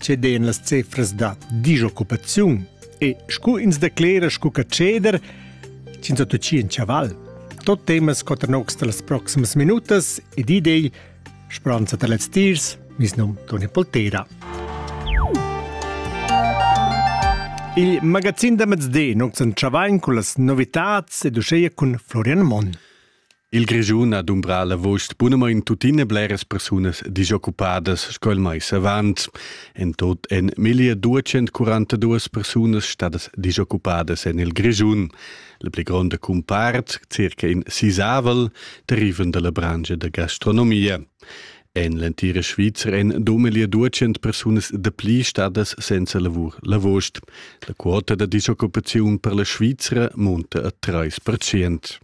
ceden las cifras da disoccupaziun e scu ins declera scu che ceder, ins ha tutti in chaval. Tot temas quatter nocs da las proximas minutas ed idei, speranza da lez tirs, mis num Toni Poltera. Il magazin da mezdi nox en Chavain cu las novitats ed uscheia cun Florian Mon. Il Grischun ha dumbrà l'avust bunamain tuttina bleras persunas disoccupadas sco il mais avant. En tot èn 1242 persunas stadas disoccupadas en il Grischun. La pli gronda cumpart, circa in sisavel, derivan dalla branca da gastronomia. En l'entira Svizra èn duemila duecent persunas dapli stadas senza lavur l'avost. La quota da disoccupaziun per la Svizra munta a 3 percent.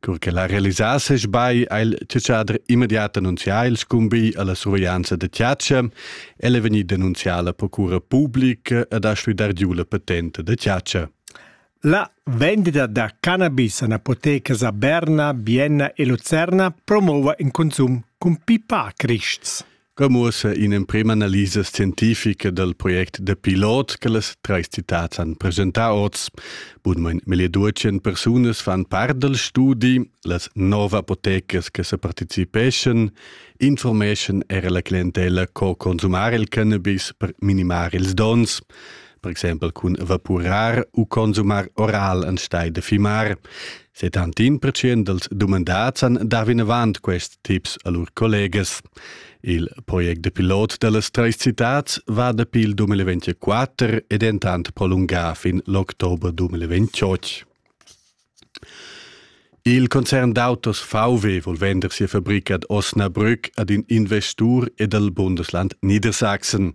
Cur che la realisases bai ha il tschadrer immediat annunzià il scumbi alla surveglianza da Tiatscha. El è vegnida annunzià alla procura pubblica ed ha stuidar giu la patente da Tiatscha. La vendita da cannabis a apotecas a Berna, Vienna e Lucerna promova in consum cun pipa crists. Co muossa in'emprema analisa scientifica dal project da pilot che las trais citads han presentà oz? Bunmain meglio duecent persunas fan part dal studi, las nov apotecas che sa participeschan informeschan era la clientella co consumar il cannabis per minimar ils dons per exempel cun vapurar u consumar oral anstelle de fimar. Se tantin precient dels dumandats han dà vinavant quest tips a lur collegas. Il project de pilot dellas treis citats va dapi il 2024 ed entant prolungà fin l'october 2028. Il concern d'autos VW vol vender sia fabrica ad Osnabrück ad in investur ed al Bundesland Niedersachsen.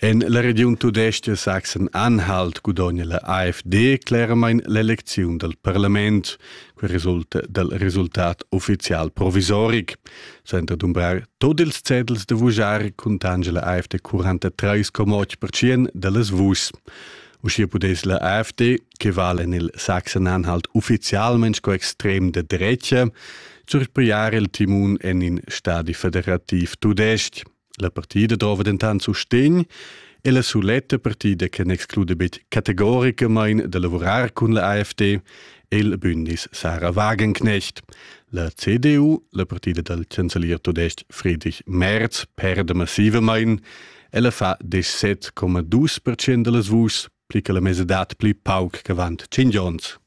En la regiun tudestga Sachsen Anhalt gudogna la AfD cleramain l'elecziun dal parlament. Quel resulta dal resultat uffizial provisoric. Senza dumbrar tot ils cedels da vujar cuntange la AfD 43,8% da las vuschs. Uschia pudess la AfD, che vala en il Sachsen-Anhalt uffizialment sco extrem de drecha, surpriare il timun en in stadi federativ tudestg. La partida drova dentant sustegn e la suletta partida che n'exclude betg categoricamain da lavurar cun la AFD è il Bündnis Sarah Wagenknecht. La CDU, la partida dal chancelier tudestg Friedrich Merz, perda massivamain. Ella fa 17,2% da las vuschs pli che la mesadad pli pauc ch'avant tschintg onns.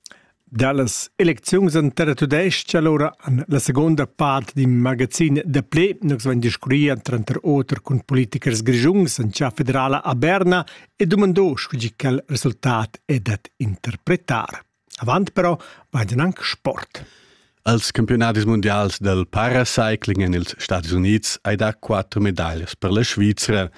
Dallas elecziuns en terra tudestga allora an la seconda part d'in magazin da ple nus vain discurria tranter oter cun politikers grigiuns en cha federala a Berna e dumandò scu tgi quel resultat è dat interpretar. Avant però vai gnanc sport. Als campiunadis mundials del paracycling en ils Stati Unids hai dà quatter medaglias per la Svizra.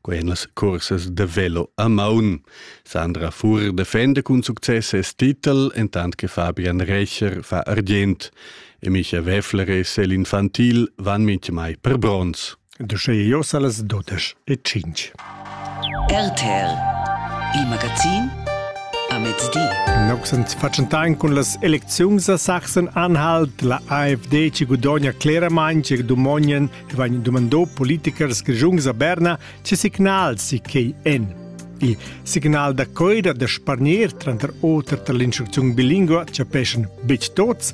Quai en las cursas de velo a maun. Sandra Fur defenda cun success ses titel, entant che Fabian Recher fa argient. E Micha Weffler e Céline Fantil van mintgamai per bronz. Da sche jeu sa las dodesch e tschintg. RTL, il magazin a mezdi. Noxens faccentain cun las elecziuns a Sachsen anhalt la AfD ci gudogna cleramain che domonien che vain domandò politikers grigiungs a Berna ce signals si quei en. Il signal da coida da spargner tranter oter tar l'instrucziun bilingua chapeschan bitg tots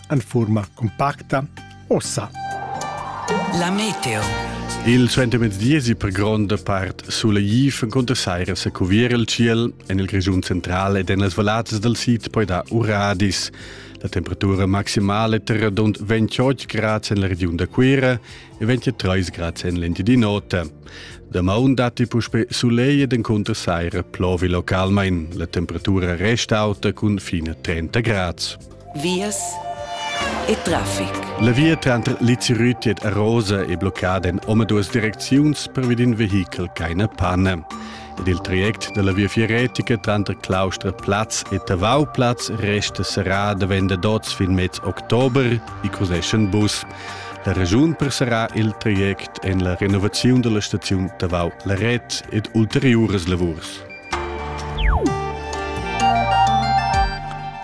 en furma compacta ossa. La meteo. Il suentermezdiesi per gronda part sulegif encunter saira se cuvier il ciel en il Grischun central ed en las vallazes dal sid poi da uradis. La temperatura maximale terra dont 28 grads en la regiun da Cuira e 23 grads en l'Engiadi Nota. Da maun datti puspe sulegl ed encunter saira plovi localmain. La temperatura resta auta cun fine 30 grads. vias e traffic. La via tranter Lizirütiet e Rosa è bloccada en omaduas direcziuns pervi d'in vehichel ch'ha pane. Ed il traject dalla Viafier Retica tranter Claustra Platz e Tavau Platz resta serrà davent da oz fin mez october, i cruzeschan bus. La regiun persarà il traject en la renovaziun dalla staziun Tavau Laret ed ulteriuras lavurs.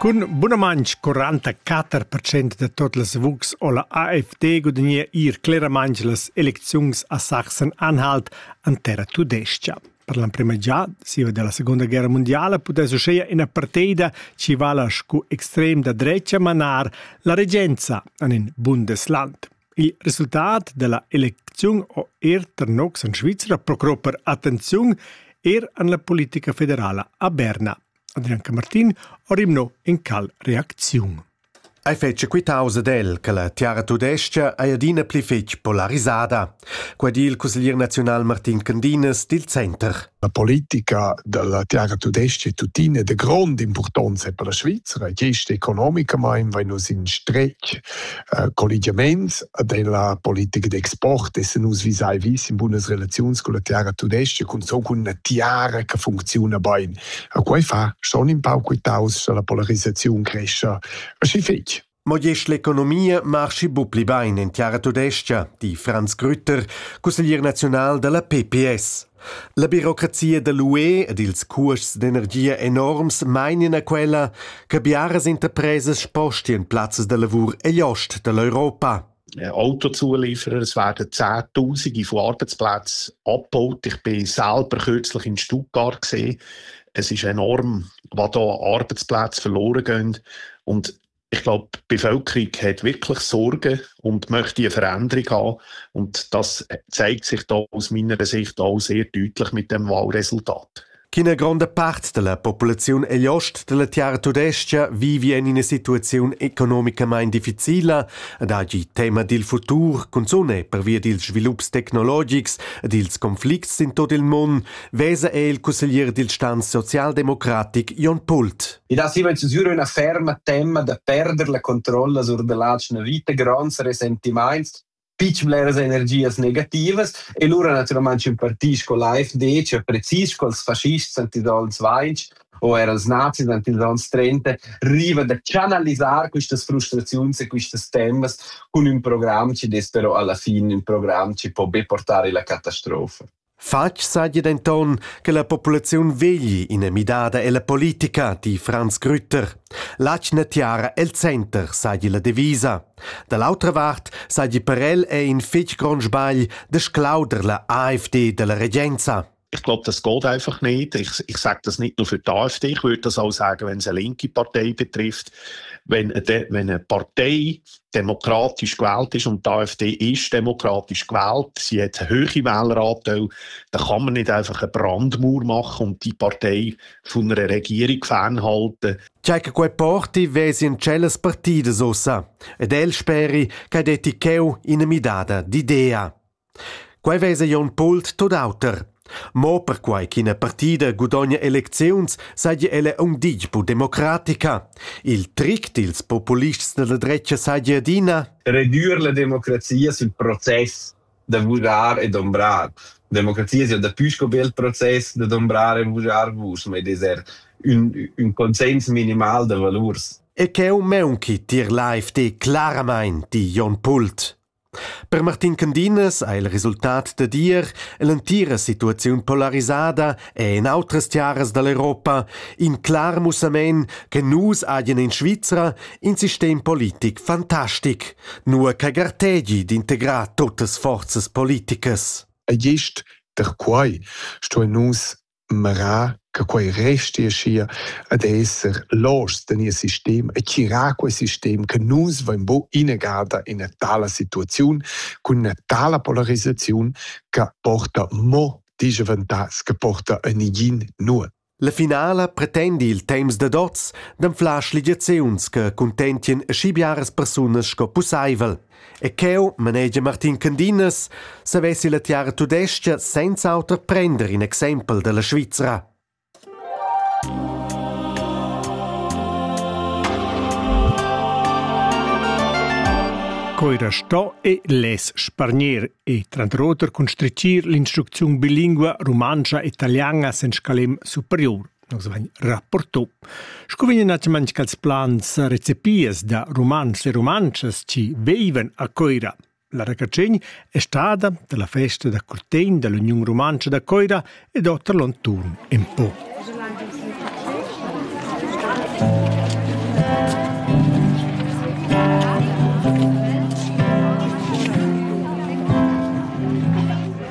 Cun bunamaintg 44% da tot las vucs o la AfD gudagnea ir cleramaintg las elecziuns a Sachsen-Anhalt an terra tudescha. Per l'emprima già, siva della Seconda Guerra Mondiala, pudess uscheia ina parteida ci vala scu extrem da drecha manar la regenza an in Bundesland. Il resultat dalla elecziun ho er tenor en Svizra procurò per attenziun er an la politica federala a Berna. Adrian Camartin ho rimnò in cal reacziun. Ei fece quitause del che la tiara tudescia ei adina pli fetg polarisada. Quei di il cusseglier nazional Martin Candinas dil Center. La politica dalla tiara tudesca e tuttina è de grond importanza per la Svizzera. Gest economicamain vai nus in stretg uh, collegiaments della politica d'export e se nus visai vis in bunas relazions con la tiara tudesca con so con una tiara che funziona bene. A quei fa schon in pau quitaus che la polarizzazione cresce. Ma schi fetg. Mo gest l'economia marschi bu pli bein en tiara tudestga, di Franz Grütter, cusseglier naziunal dalla PPS. La birocrazia dall'UE ed ils cuosts d'energia enorms meinien a quella che biaras interpresas spostien plazzas da lavur egl ost dall'Europa. Autozulieferer werden Zehntausende von Arbeitsplätzen abgebaut. Ich bin selber kürzlich in Stuttgart gesehen. Es ist enorm, was da Arbeitsplätze verloren gehen. Und Ich glaube, die Bevölkerung hat wirklich Sorgen und möchte eine Veränderung haben. Und das zeigt sich da aus meiner Sicht auch sehr deutlich mit dem Wahlresultat. Keine grande parte della popolazione è l'ost della Terra Tudestia vive in una situazione economicamente difficile ed oggi tema del futuro, cunzone per via dels svilupps tecnologics e dels conflicts in tot il mondo, vesa è il consigliere del Stan socialdemocratic Jon Pult. I dat siva inzusura üna ferma temma da perder la controlla sur da latg üna vita gronds resentimaints, fich bleras energias negativas e lura natüralmaing impartisch col AfD, cioè precis cols faschists antidolens 20 o er als nazis antidolens 30, riva da chanalisar quistas frustraziuns e quistas temas cun ün program chi dess però alla fin ün program chi po be portar illa catastrofa. Fatg saja denton che la populaziun vegli ina midada ella politica, di Franz Grütter. L'atgna tiara el center saja la devisa. Da l'autra vart saja per el è in fitg grond sbagl de sclauder la AfD della regenza. Ich glaube, das geht einfach nicht. Ich, ich sage das nicht nur für die AfD. Ich würde das auch sagen, wenn es eine linke Partei betrifft. Wenn eine, wenn eine Partei demokratisch gewählt ist und die AfD ist demokratisch gewählt, sie hat eine hohe Wähleranteil, dann kann man nicht einfach eine Brandmauer machen und die Partei von einer Regierung fernhalten. Check quei porti vesi in celas partidas ussa, ed el speri che det cheu in midada d'idea. Quei vesa Jon Pult tut auter. Mo perquai ch'ina partida gudogna elecziuns seigi ella aunc ditg bu democratica. Il tric dils populists dalla dretga seigi adina Redur la democrazia sil process da vugar e dombrar. Democrazia sia daplü sco be il process da dombrar e vugar vus, ma ed er un, un consens minimal da valurs. E cheu meunchi tier la FD claramain, di Jon Pult. Per Martin Candinas ha il resultat dad ir l'entira situaziun polarisada e en outras tiaras dall'Europa in clar mussamein che nus hagen in Svizra in sistem politic fantastic, nur che gartegi d'integrar tuttas forzas politicas. E gest per quai stuein nus merar che quei resti aschia ad esser loschs da nies sistem e tirar quei sistem che nus vein bu innegada in una tala situaziun cun una tala polarisaziun che porta mo disgiaventas che porta a nigin nuot. La finala pretendi il temps dad oz d'anflar schligiaziuns che cuntentien aschi biaras persunas sco pusseivel. E cheu, manegia Martin Candinas, savessi la tiara tudestga senza auter prender in exempel dalla Svizra. Coira sto e les spargner e trantroter constricir l'instrucziun bilingua rumantscha e italiana sen scalem superior. Nus vain rapporto. Scu vegnan natschaments cha'ls plans recepias da Rumantschs e Rumantschas chi veivan a Coira? La racacegn è stada da la festa da curtegn da l'Uniun Rumantscha da Coira ed oter l'onturn in po.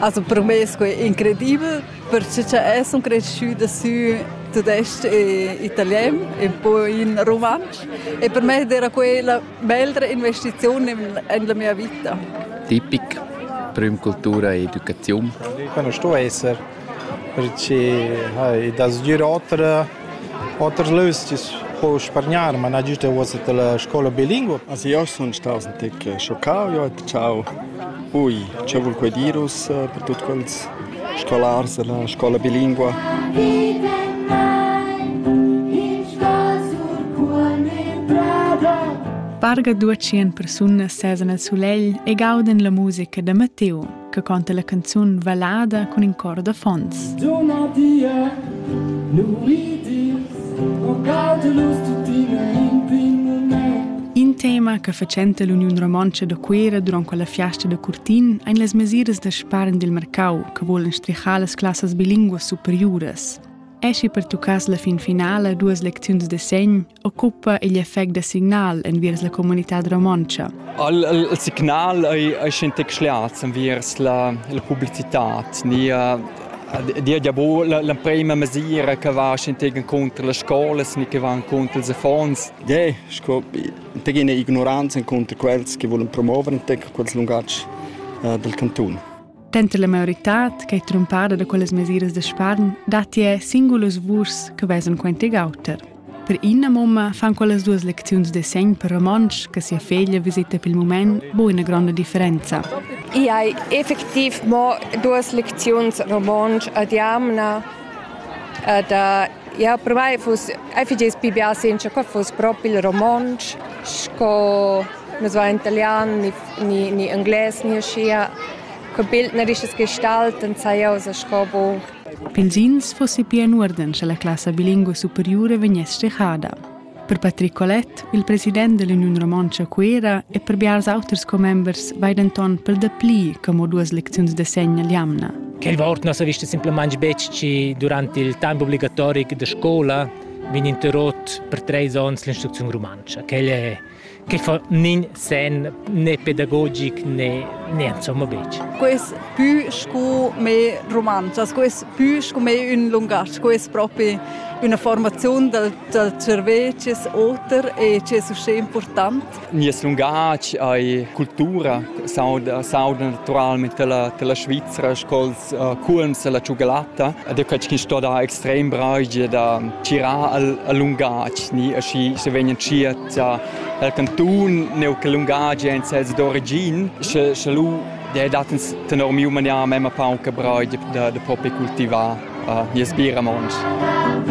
Also per me è incredibel. Perche cha es sun creschüda sü tudesc e italien e poi in rumantsch e per me era quella bellra investiziun in la mia vita. Tipic prüm cultura e educaziun. Quando sto esser perché hai das gnir oter Oters lös chi's po spargnar, ma nagüst è uossa la scoula bilingua. As io sun staus in tic schoccau, io ho detto ciao. Ui, che vul quai dir us per tuot quels scolars della scola bilingua? Parga duecien persunas sesa nel sulegl e gauden la musica da Matteo. che conta la canzun Valada cun in cor da fons. Dona dia, In tema che facente l'Uniun Romontscha da Cuera durant quella fiasta da Curtin ein las mesiras da spargn dil mercau che volen strichar las classas bilinguas superiuras. Esci per tuccas la fin finala duas lecziuns de segn, occupa igl effect da signal enviers la comunitad romontscha. Il, il, il signal ei, ei scentec schliats enviers la, la publicitat, ni dia ja bu l'emprema mesira che va scentegen contro le scuole, ni che van contro ils affons. Ja, sco tegine ignoranza contro quels che volen promuovere quels lungaggi uh, del canton. Denter la maioritad ch'ei trumpada da quellas mesiras da spargn datti è singulas vurs che vesan quentig auter. Per ina mumma fan quellas duas lecziuns de segn per romontsch che sia feglia visita per il moment bu una grande differenza. Io hai effektiv mo duas lecziuns romontsch ad jamna da Ja, per mai fuss, ei figess pli bia senza che fuss propi il romontsch, sco nus va in italian ni, ni, ni englais ni uschia. Col bildnerisches Gestalten sai eu sa sco bu. Pils ins fossi pia in uorden, sche la classa bilingua superiura vegness strehada. Per Patrick Colette, il president dell'Union Romontsch a Cuera e per biars auters commembers vai denton per dapli che mo duas lecziuns de segna l'jamna. Quei wort nos ha visto simplemente betg ci durante il tempo obbligatorico de scola vin interrot per treis onns l'instruzione romancia. Quella è che fa nin sen né pedagogic né né insomma betg. Quest pü scu me romanzas, quest pü scu me ün lungatg, quest propi üna formaziun dal, dal cervec es oter e es uschè important. Nies lungatg ei cultura, sauda, sauda naturalmente la, la Svizzera, sco'ls uh, culms e la ciugalata. Ed è qualche che sto da extrem bragio da tirar al, al lungatg, ni, aschi se vegnan cia Cha il cantun neu che lungadi ein sezs d'origin, sche sche lu dei dat ins tenor miu manier memma paun che braid da da propi cultivar uh, nies bira monsch.